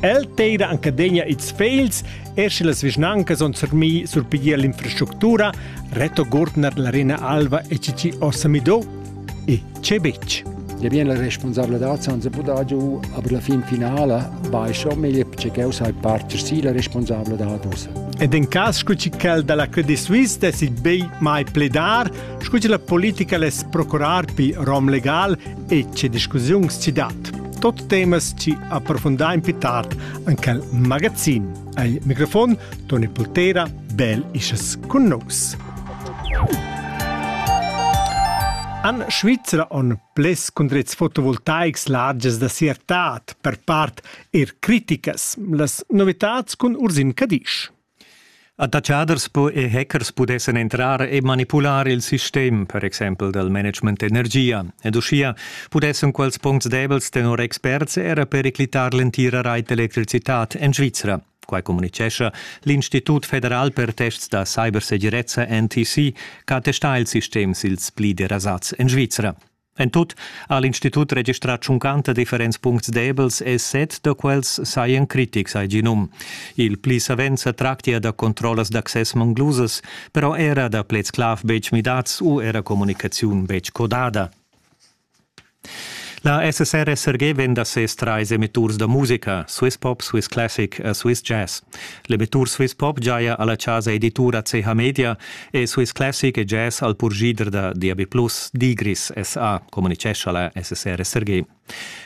El teira anchadegna its fegls, er sche las vischnancas on surmi surpiglier l'infrastructura, Reto Gurtner l'arena alva e cici orsamido e c'è bec. Je bien la responsabilità senza poter giù, aber la fin finale vai schon meglio perché sai parte sì la responsabilità dus. Ed in cas scuci quel dalla Credit Suisse de si bei mai pledar, scuci la politica les procurar pi rom legal e che discussiuns ci dat. Tot temas ci approfundà in più tard anche il magazin. Al microfon Toni Pultera, bel isches con nous. An Svizzera on ples condrets fotovoltaics larges da siertat, per part er criticas, las novitats cun Ursin Cadisch. Attatschaders po e hackers pudessan entrar e manipular il sistem, per exempel dal management d'energia, ed uschia pudessan quels puncts debels tenor experts era periclitar l'entira rait d'electricitad en Svizra. Quai communitgescha l'Institut federal per tests da cybersegirezza NTC, che attesta il sistem ils pli derasats en Svizra. En tut ha l'institut registrà tschuncanta differents puncts debels e set da quels sajan critics ai ginum. Il pli savens sa tractia da controllas d'access manglusas, però era da pleds-clav betg midads u era communicaziun betg codada. La SSR SRG venda ses trais emitturs da musica, Swiss Pop, Swiss Classic e Swiss Jazz. L'emettur Swiss Pop giaja alla chasa editura CH Media e Swiss Classic e Jazz al purgider da DAB+, Digris SA, communicescha la SSR SRG.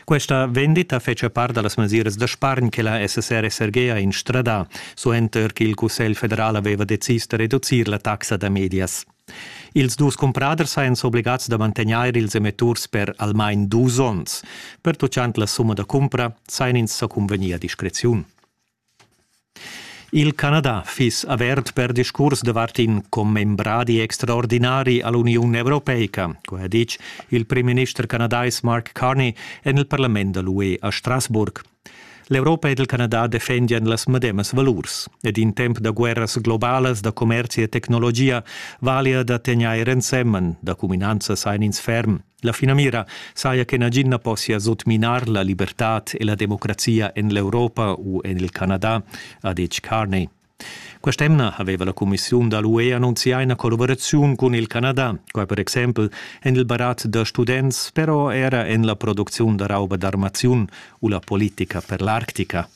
Questa vendita fece part dallas mesiras da spargn che la SSR SRG ha instradà, suenter ch'il Cussegl federal aveva decis da reducir la taxa da medias. Ils dus cumpraders ein s'obligats da mantegnair ils emetturs per almain dus onns. Pertuccant la summa da cumpra sain ins sa cunvegnir a discreziun. Il Canada fiss avert per discurs davart in commembradi extraordinari a l'Uniun europeica, co ha ditg il primminister canadais Mark Carney en il parlament da l'UE a Strasbourg. L'Europa ed il Canada defendian las medemas valurs ed in temp da guerras globalas da commerzi e tecnologia valia da tegnair ensemen, da cuminanzas ein ins ferm. La finamira saja che nagin na possia sotminar la libertad e la democrazia en l'Europa u en il Canada, ha detg Carney. Quest'emna aveva la Commissiun da l'UE annunzià ina collaboraziun cun il Canada, quai per exempel en il barat da students, però era en la producziun da rauba d'armaziun u la politica per l'Arctica.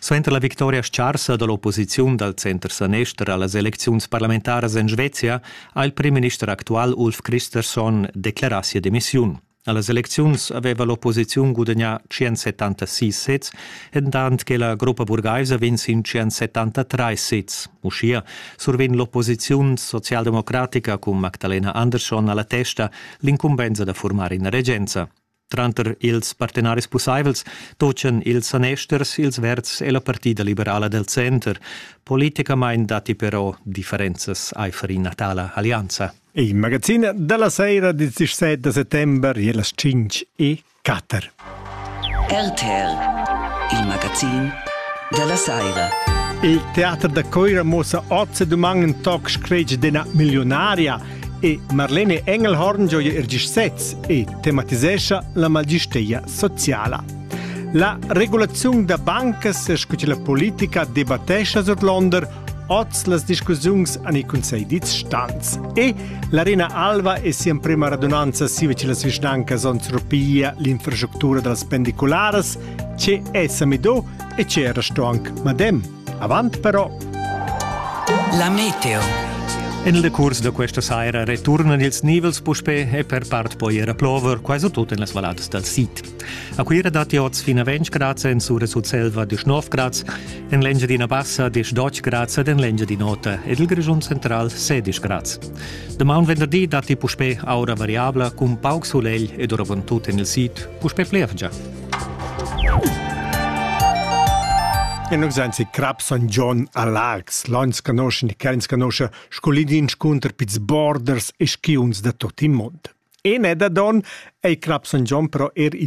Suenter la victoria scarsa dall'opposiziun dal center-sanister allas elecziuns parlamentaras en Svezia ha il primminister actual Ulf Kristersson declarà sia demissiun. Allas elecziuns aveva l'opposiziun gudagnà 176 sezs, entant che la gruppa burgaisa vinz in 173 sezs. Uschia survegn l'opposiziun socialdemocratica cun Magdalena Andersson alla testa l'incumbensa da formar ina regenza. Tranter ils partenaris pussaivels tutgan ils sanesters, ils Verds e la Partida liberala del Center. Politicamain datti però differenzas aifer ina tala allianza. Il magazin dalla sera dil 17 da settember e las 5 e 4. RTL, il magazin della sera. Il teater da Coira mossa ozze duman in toc scretg d'ena milionaria e Marlene Engelhorn gioia er gis sez e tematisescha la magisteia sociala. La regulaziun da bancas e scu la politica debattescha Sodlonder oz las discussiuns an i consegl dits stans. E l'Arena Alva è sia prima radunanza sive ce las vischnancas on surpia l'infrastructura da las pendicularas, ce è Samido e ce era sto anc Madem. Avant però. La meteo. En il curs da questa saira returnan ils nivels puspè e per part poi era plover, quasi tut en las valladas dal sid. A Cuira datti oz fin a 20 grad en Sura Sutselva 19 grad, en l'Engiadina Bassa 10 grad ed en l'Engiadin'Ota ed il Grischun central 16 grad. Damaun venderdi datti puspè aura variabla cun pauc sulegl ed oravant tut en il sid puspè plievgia. E nus ein si Crap San John a Laax, l'ons canosce ni ch'ins canosce scolin d'inscunter pils borders e skiunz da tot il mond. E ne da don ei Crap San John però er il